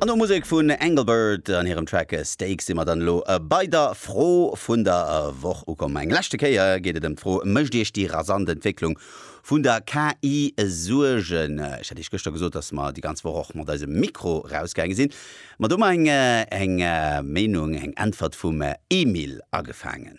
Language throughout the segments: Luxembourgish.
An no Musek vun Engelbert an hirem Track Steak si mer dann elo bei der Fro vun der Woch ukomm. Eng leschte Kéier geet et ëm d'Fro, Mécht Iech déi rasant Entwécklung vun der KI Suergen? Ech hat Iech gëschter gesot, datt mer déi ganz Woch och mat eisem Mikro rausgaange sinn. Ma do hu mer eng Meenung, eng Äntwert vum Emil agefaangen.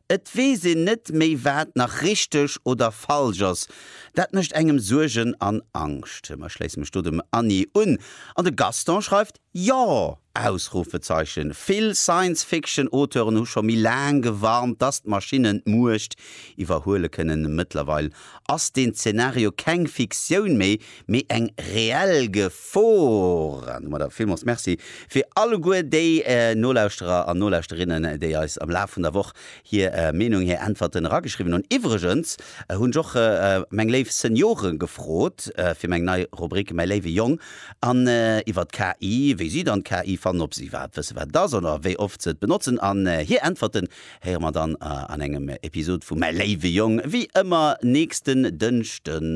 Et weess een net méi wat nach richteg oder falsch ass. Dat mécht engem Suergen an Angscht. Ech schléisse mech do dem Anni un. An de Gaston schreift, Jo! Ausrufezeichen. Vill Science-Fiction-Auteuren hu scho méi laang gewarnt, dass d'Maschinne d'Muecht iwwerhuele kënnen. Mëttlerweil ass deen Zeenario keng Fiktioun méi, mee eng reell Gefor. An domadder villmools Merci fir alleguer déi Nolauschterer an Nolauschterinnen, déi eis am Laf vun der Woch hir Meenung, hir Äntwerten erageschriwwen hunn. Iwwregens hunn ech och meng léif Seniore gefrot fir meng nei Rubrik Mäi léiwe Jong an iwwert d'KI, wéi si dann d'KI fannen, ob si iwwerhaapt wësse wat et ass oder wéi oft se et benotzen. An hir Äntwerten Héiere mer dann an engem Episod vu Mäi léiwe Jong, wéi ëmmer nächsten Dënschden.